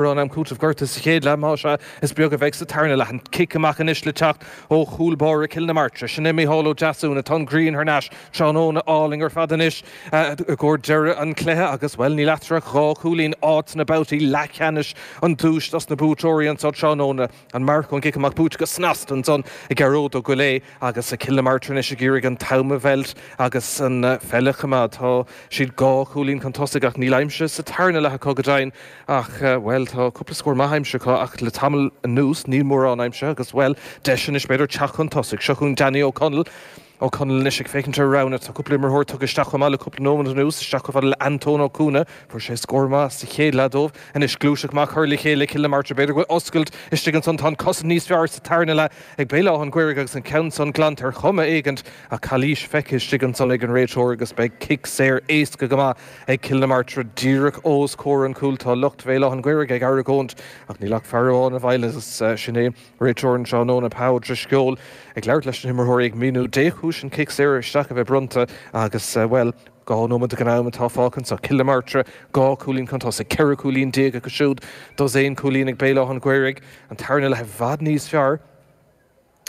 Mórán am cúitimh gortaithe sa chéad leath, más ea, is beag a bheidh sa tarna leath. An cic amach anois le teacht ó chúl báire Chill na Martra. Sin é Micheál Ó Deasúna. Tá an ghrian thar n-ais. Tráthnóna álainn ar fad anois i gcomhair deireadh an chluiche agus, bhuel, níl eatarthu ach dhá chúilín. Áit sna babhtaí leathcheannais an duais dos na buaiteoirí anseo tráthnóna. An marc ón gcic amach buaite go snasta ansan ag Gearóid Ó Goillé agus Cill na Martra anois ag iarraidh an t-am a mheilt agus an pheil a choimeád. Tá siad dhá chúilín chun tosaigh ach níl aimsithe sa tarna leath acu go deimhin ach, bhuel, tá cúpla scór maith aimsithe acu ach le tamall anuas níl mórán aimsithe agus, bhuel, deis anois b'fhéidir teacht chun tosaigh. Seo chugainn Danny Ó Conaill. Ó Conaill anois ag féachaint ar a roghanna. Tá cúpla imreoir tugtha isteach chomh maith le cúpla nóiméad anuas, isteach chomh fada le Antóin Ó Cuana. Fuair sé scór maith sa chéad leath dóibh. Anois gluaiseacht maith curtha le chéile ag Cill na Martra. B'fhéidir go bhfuil oscailt istigh ansan. Tá an cosaint níos fearr sa tarna leath ag Béal Átha an Ghaorthaidh agus an ceann san glanta ar chuma éigint ach calaois feicthe istigh ansan ag an réiteoir agus beidh cic saor éasca go maith ag Cill na Martra díreach os comhair an chúil. Tá lucht Bhéal Átha an Ghaorthaidh ag argóint ach níl ach fear amháin i bhfeighil agus sin é. Réiteoir an tráthnóna, Pa Ó Drisceoil, ag labhairt leis na himreoirí ag míniú dé chúis an cic saor isteach a bheith bronnta agus, bhuel, dhá nóiméad de ghnáth-am atá fágtha anseo. Cill na Martra, dhá cúilín chun tosaigh, ceithre chúilín déag acu siúd, dosaen cúilín ag Béal Átha'n Ghaorthaidh, an tarna leath i bhfad níos fearr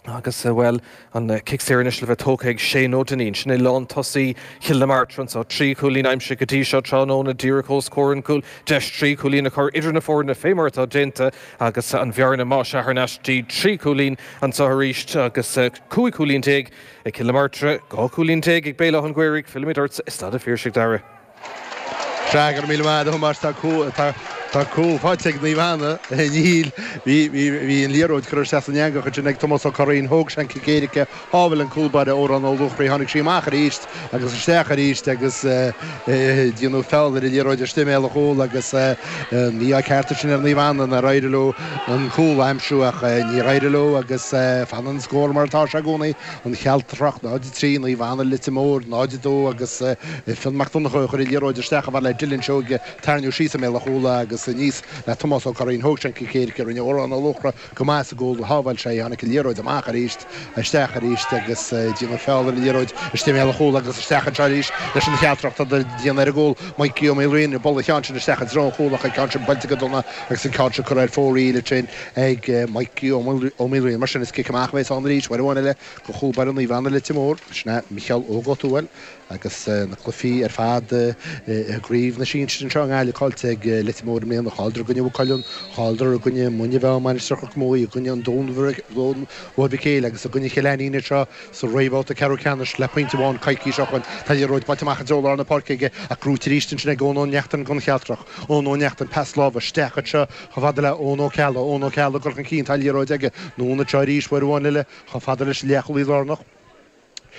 agus, bhuel, An cic saor anois le bheith tógtha ag Shane Ó Duinnín. Sin é lántosaí Chill na Martra anseo. Trí chúilín aimsithe go dtí seo tráthnóna, díreach os comhair an chúil. Deis trí chúilín a chur idir na foirne fé mar atá déanta agus an bhearna más ea thar n-ais dtí trí chúilín anseo arís agus cúig chúilín déag ag Cill na Martra, dhá chúilín déag ag Béal Átha'n Ghaorthaidh. Fillimid ort i Staid a' Phiarsaigh, Dara. Go raibh míle maith agat, a Thomáis. Tá cúl faighte ag Naomh Anna. Níl. Bhí an liathróid curtha isteach san eangach ansin ag Tomás Ó Curraoin. Thóg sé an cic éirice, shábhail an cúl báire, Odhrán Ó Luachraí, tháinig sí amach arís agus isteach arís agus déanadh feall ar an liathróid istigh i mbéal an chúil agus mí-ádh ceart ansin ar Naomh Anna nár éirigh leo an cúl a aimsiú ach níor éirigh leo agus fanann an scór mar atá sé i gcónaí. an Chealtrach, 03, Naomh Anna, Leitir Móir, 02, agus Fionn Mac Donnchadha a chuir an liathróid isteach a fhad le Dylan Seoige, tarraingíodh síos i mbéal an chúil agus aníos le Tomás Ó Curraoin. Thóg sé an cic éirice, rinne Odhrán Ó Luachra go maith sa gcúl, shábháil sé í, tháinig an liathróid amach arís, isteach arís agus déanadh feall ar an liathróid istigh i mbéal an chúil agus isteach anseo arís leis an Chealtrach. Tá siad ag déanamh ar an gcúl, Maidhcí Ó Maoilriain, buaileadh an ceann sin isteach i dtreo an chúil ach an ceann sin buailte go dona agus an ceann seo curtha ar fóraoil ansin. ag Micí Ó Maoilriain. Mar sin, is cic amach a bheas ann arís, uair amháin eile, do chúl báire Naomh Anna Leitir Móir. Sin é Micheál Óg Ó Tuathail agus na cluifí ar fad i gcraobh na sinsir anseo i nGaillimh. Caillte ag Leitir Móir i mbliana, chailleadar i gcoinne Mhaigh Cuilinn, chailleadar i gcoinne Muine Mheá, Mainistir Chnoc Muaidh, i gcoinne an Dún Mhóir Mhic Éil agus i gcoinne Chill Ainnín anseo sa réamhbhabhta ceathrú ceannais le pointe amháin coicís ó shoin. Tá an liathróid buailte amach i dtreo lár na páirce aige ach buaite arís ansin ag Eoin Ó Neachtain, don Chealtrach. Eoin Ó Neachtain, pas láimhe isteach anseo. Chomh fada le Eoin Ó Ceallaigh, Eoin Ó Ceallaigh ag goil chun cinn, tá liathróid aige, anonn anseo arís uair amháin eile, chomh fada leis an leathchúlaí lárnach,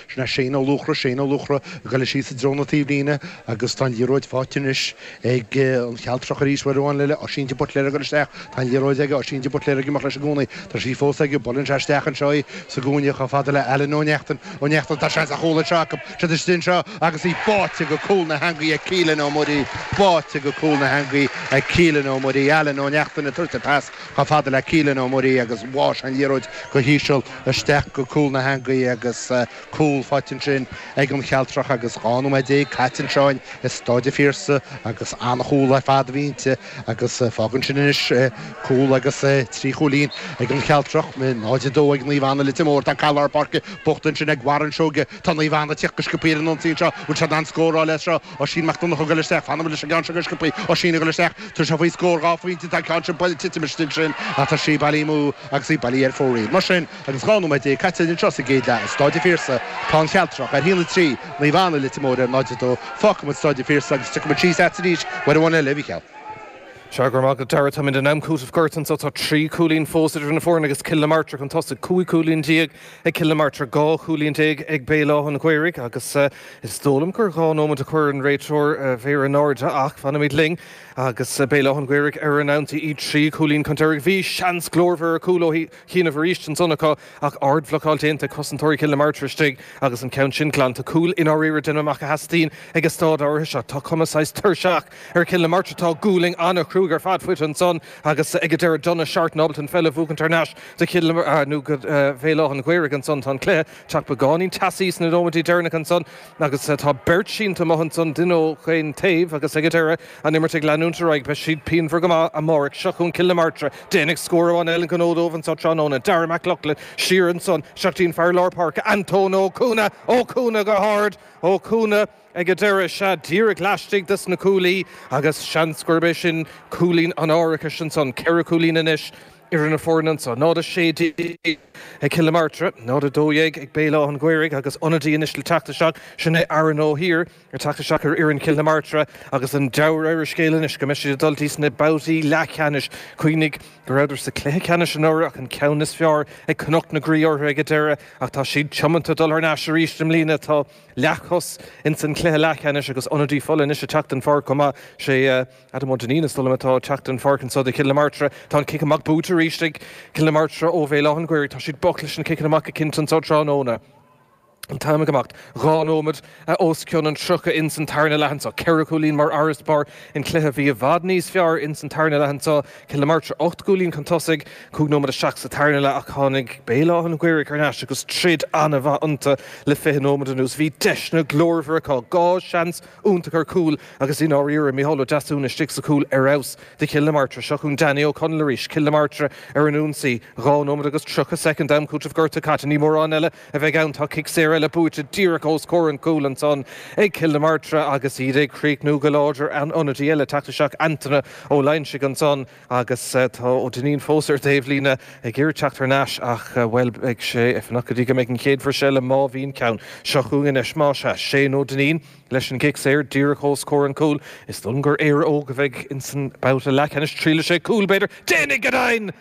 sin é Shane Ó Luachra, Shane Ó Luachra ag goil síos i dtreo na taobhlíne agus tá an liathróid faighte anois ag an Chealtrach arís uair amháin eile, Oisín de Buitléar ag goil isteach, tá an liathróid aige, Oisín de Buitléar ag imeacht leis i gcónaí, tá sí fós aige, buaileann sé isteach anseo í sa gcúinne chomh fada le Alan Ó Neachtain, Ó Neachtain, tá seans ar chúl anseo acu. traidisiún seo agus í báite go cúl na heangaí ag Keelin Ó Muirí báite go cúl na heangaí ag Keelin Ó Muirí Alan Ó Neachtain ag tabhairt an pas chomh fada le Keelin Ó Muirí agus bháigh sé an liathróid go híseal isteach go cúl na heangaí agus cúl faighte ansin ag an Chealtrach agus 12 nóiméad caite anseo i Stáid a' Phiarsaigh agus an-chúl ar fad a bhí inti agus fágann sin anois cúl agus trí chúilín ag an Chealtrach, 0-2 ag Naomh Anna Leitir Móir tá cic lár páirce buaite ansin ag Warren Seoige. Tá Naomh Anna ag teacht go sciopthaí ar an ionsaí anseo. Bhfuil siad in ann scóráil as seo? Oisín Mac Donnacha ag goil isteach. Fanfaimid leis an gceann seo go sciopthaí. Oisín ag goil isteach. Tá sé faoi scór. Dhá phointe. Tá an ceann seo buailte ag titim istigh ansin ach tá sí bailí amú agus í bailí ar fóraoil. Mar sin, agus dhá nóiméad déag caite anseo sa gcéad leath i Stáid an Phiarsaigh, tá an Chealtrach ar 1-3, Naomh Anna Leitir Móir ar 0-2. Fágfaimid Stáid an Phiarsaigh agus tiocfaimid síos agat arís uair amháin eile, a Mhicheál. Sea, go raibh maith agat, Darragh. Táimid in am cúitimh gortaithe anseo. Tá trí chúilín fós idir na foirne agus Cill na Martra chun tosaigh, cúig chúilín déag Ag Cill na Martra 12 chúilín ag Béal Átha an Ghaorthaidh agus is dóigh liom gur dhá nóimead a chuir an réiteoir a mhéar in airde ach fanfaimid linn agus Béal Átha an Ghaorthaidh ar an ionsaí, iad trí chúilín chun deiridh. Bhí seans glórmhar ar chúl ó chianaibh arís ansan acu ach ardbhlocáil déanta ag cosantóirí Chill na Martra istigh agus an ceann sin glanta. Cúl i ndáiríre déanaim amach a theastaíonn ag an stáid áirithe seo. Tá cuma saghas tuirseach ar Chill na Martra, tá gualainn ana-chruaidh ar fad faighte ansan agus ag an deireadh Donagh Seartan ábalta an pheil a bhuachaint thar n-ais. de Chill Áirne nó go Béal Átha'n Ghaorthaidh ansan. Tá an cluiche ag teacht beagáinín teasaí sna nóimintí deireannacha ansan agus tá beirt sínte amuigh ansan, duine ó chaon taobh agus ag an deireadh, an imirt ag leanúint ar aghaidh. Beidh siad pianmhar go maith amáireach seo chun Cill na Martra. Déanfaidh scór amháin eile an gnó dóibh anso tráthnóna. Darragh Mac Lochlainn siar ansan isteach dtí'n fear lár páirce, Antóin Ó Cuana. Ó Cuana go hard. Ó Cuana ag an deireadh, sea, díreach laistigh dos na cuaillí agus seans gurb é sin cúilín an árachais ansan. Ceithre chúilín anois. idir na foirne anso, 0, 16 ag Cill na Martra, 0, 12 ag Béal Átha'n Ghaorthaidh agus ionadaí anois le teacht isteach, sin é Aaron O'Heir ag teacht isteach ar fhoireann Chill na Martra agus an dealramh ar an scéal anois go mbeidh siad ag dul dtí sna babhtaí leathcheannais. Cuimhnigh go rabhadar sa cluiche ceannais anuraidh ach an ceann is fearr ag Cnoc na Graí orthu ag an deireadh ach tá siad tiomanta dul thar n-ais arís i mbliana. Tá leathchos ins an chluiche leathcheannais agus ionadaí fola anois ag teacht den pháirc chomh maith, sé Adam Ó Duinnín, Is dóigh liom atá ag teacht den pháirc anso do Chill na Martra. Tá an cic amach buaite arís ag Cill na Martra ó Bhéal Átha'n Ghaorthaidh. Tá siad bocht leis na ciceanna amach cinnte anso tráthnóna. An t-am ag imeacht. Dhá nóimead os cionn an tríocha ins an tarna leath anso. Ceithre chúilín mar fharasbarr. An cluiche bhí i bhfad níos fearr ins an tarna leath anso. Cill na Martra ocht gcúilín chun tosaigh. Cúig nóimead isteach sa tarna leath ach tháinig Béal Átha'n Ghaorthaidh thar n-ais agus troid an-mhaith iontu le fiche nóimead anuas. Bhí deiseanna glórmhara acu. Dhá sheans iontach ar cúl agus i ndáiríre, Mícheál Ó Deasúna istigh sa chúl ar fheabhas do Chill na Martra. Seo chugainn Danny Ó Conaill arís, Cill na Martra ar an ionsaí. Dhá nóiméad agus tríocha soicind d'am cúitimh gorta caite. Ní mórán eile a bheidh ann. Tá cic saor eile buaite díreach os comhair an chúil ansan ag Cill na Martra agus iad ag críochnú go láidir. Ionadaí eile ag teacht isteach Antaine Ó Loingsigh ansan. Agus tá Ó Duinnín fós ar an dtaobhlíne ag iarraidh teacht thar n-ais ach, bhuel, beidh sé ag fanacht go dtí go mbeidh an chéad bhris eile, má bhíonn ceann, seo chugainn anois. Más ea, Shane Ó Duinnín leis an gcic saor díreach os comhair an chúil. Is dóigh liom gur Éire Óg a bheidh insan mbabhta leathcheannais. Triailfidh sé cúl, b'fhéidir. Déanfaidh go deimhin!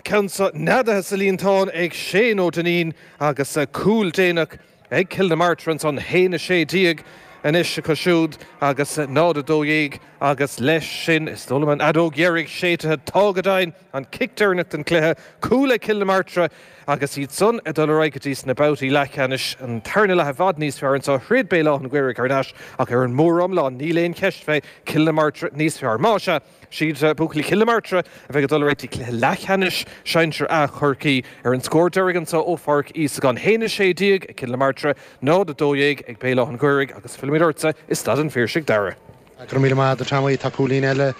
Ceann san neadaithe sa líontán ag Shane Ó Duinnín agus cúl déanach ag Cill na Martra ansan, 1, 16, anois acu siúd agus 0, 12, agus leis sin is dóigh liom an fheadóg dheiridh séidte. Tá go deimhin, an cic deireanach den chluiche, cúl ag Cill na Martra agus iad san ag dul ar aghaidh go dtí sna babhtaí leathcheannais. An tarna leath i bhfad níos fearr anso. Throid Béal Átha'n Ghaorthaidh thar n-ais ach ar an mór-iomlán níl aon cheist fé, Cill na Martra níos fearr. Más ea. 'S iad buachaillí Chill na Martra a bheidh ag dul ar aghaidh go dtí cluiche leathcheannais sinsir A Chorcaí. Ar an scór deiridh anseo ó Pháirc Íosagáin, 1, 16, ag Cill na Martra, 0, 12 ag Béal Átha'n Ghaorthaidh agus fillimid ortsa i Staid an Phiarsaigh, Dara. Go raibh míle maith agat Tommy, tá cúilín eile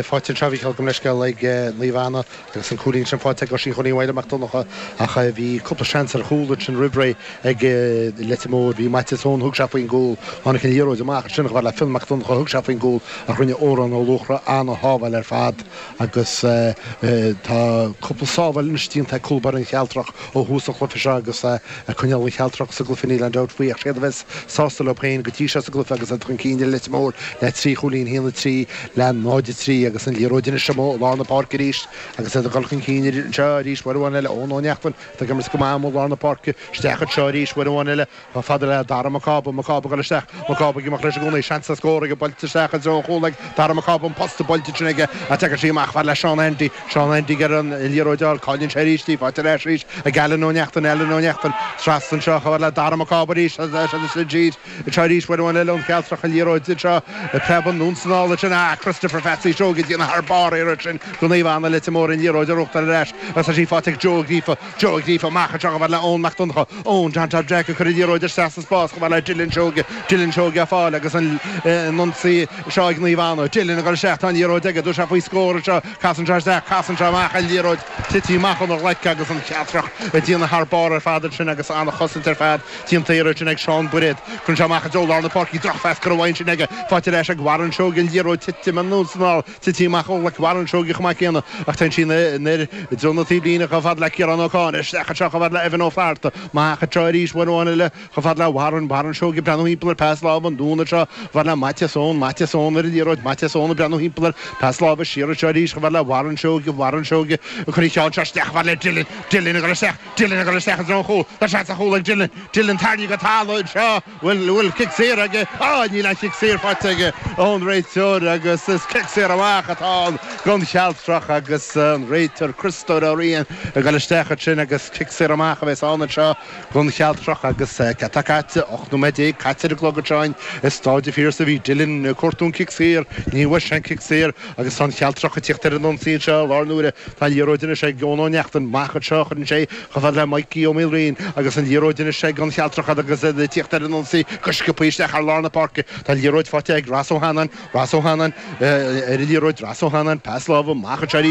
faighte anseo a bhí ag, gabh mo leithscéal, ag Naomh Anna. Agus an cúilín sin faighte ag Oisín Chonnaith Mháire Mac Donncha ach bhí cúpla seans ar chúl ansin roimh ré ag Leitir Móir. Bhí Maitias ann, thug sé faoin gcúl, tháinig an liathróid amach ansin, chomh fada le Fionn Mac Donncha, thug sé faoin gcúl ach rinne Odhrán Ó Luachra an-shábháil ar fad agus tá cúpla sábháil anois déanta ag cúl báire an Chealtrach ó thús an chluife seo agus Ag coinneáil an Chealtrach sa gcluife níl aon dabht faoi ach 's iad a bheas sásta leo féin go dtí seo sa gcluife agus iad chun cinn ar Leitir Móir le trí chúilín, 1-3 le 0-3 agus an liathróid anois amuigh i lár na páirce arís agus iad ag dul chun cinn anseo arís uair amháin eile. Eoin Ó Neachtain atá ag imirt go maith amuigh i lár na páirce isteach anseo arís uair amháin eile chomh fada le Dara Mac Cába. Mac Cába ag dul isteach. Mac Cába ag imeacht leis i gcónaí. Seans ar scór aige. Buailte isteach i dtreo an chúl ag Dara Mac Cába. An posta buailte aige ach teagann sí amach chomh fada le Seán Andy. Seán Andy ag iarraidh an liathróid a fháil, cailleann sé arís í, faighte ar ais arís ag Alan Ó Neachtain, Alan Ó Neachtain, trasna anseo chomh fada le Dara Mac Cába arís, seo iad arís uair amháin eile an Chealtrach an liathróid anseo, preabann anonn 's anall ansin, ach Christopher Pheatsaí Seoighe ag déanamh thar barr an iarraidh sin do Naomh Anna, Leitir Móir an liathróid a ghnóthachtáil ar ais, agus tá sí faighte ag Joe Ó Gríofa, Joe ag lífadh amach anseo chomh fad le Eoin Mac Donncha, Eoin, John Tom Jack, ag cur an liathróid isteach sa spás chomh fad le Dylan Seoige, Dylan Seoige á fáil agus an ionsaí seo ag Naomh Anna, Dylan ag dul isteach, tá an liathróid aige, tá sé faoi scór anseo, casann sé isteach, casann sé amach an liathróid, tite amach óna ghlaic agus an Chealtrach ag déanamh thar barr ar fad ansin agus an-chosaint ar fad déanta air ansin ag Seán Bairéad, cuireann sé amach i dtreo lár na páirce, drochphas curtha uaidh ansin aige, faighte ar ais ag Warren Seoige, an liathróid titim anuas anall. Tite amach ó ghlaic Warren Seoighe chomh maith céanna, ach téann sí anoir i dtreo na taobhlíne chomh fad le Ciarán Ó Conghaile, isteach anseo chomh fad le Evan Ó Flaithearta, amach anseo arís uair amháin eile chomh fad le Warren, Warren Seoighe ag breathnú thimpeall air, pas láimhe anonn anseo chomh fad le Maitias Eoin, Maitias Eoin ar an liathróid, Maitias Eoin ag breathnú thimpeall air, pas láimhe siar anseo arís chomh fad le Warren Seoighe, Warren Seoighe ag cur an ceann seo isteach chomh fad le Dillon, Dillon ag dul isteach, Dillon ag dul isteach i dtreo an chúil, tá seans ar chúl ag Dillon, Dillon tarraingthe go talamh anseo, Bhfuil, bhfuil cic saor aige. Á, níl an chic saor faighte aige ón réiteoir agus is cic saor amach atá ann don Chealtrach agus an réiteoir, Criostóir Ó Riain, ag dul isteach ansin agus cic saor amach a bheas ann anseo don Chealtrach agus céard atá caite? 18 nóiméad caite ar an gclog anseo in Staid an Phiarsaigh. Bhí Dylan ag cuartú an cic saor, ní bhfuair sé an cic saor. Agus tá an Chealtrach ag tíocht ar an ionsaí anseo i láthair na huaire. Tá an liathróid anois ag Eoin Ó Neachtain. Amach anseo a chuireann sé chomh fada le Mikey Ó Maoilriain agus an liathróid anois ag an Chealtrach agus iad ag tíocht ar an ionsaí go sciopaí isteach thar lár na páirce. Tá an liathróid faighte ag Ros Ó hAnnáin. Ros Ó hAnnáin ar an liathróid. Ros Ó hAnnáin, pas láimhe. Amach anseo arís.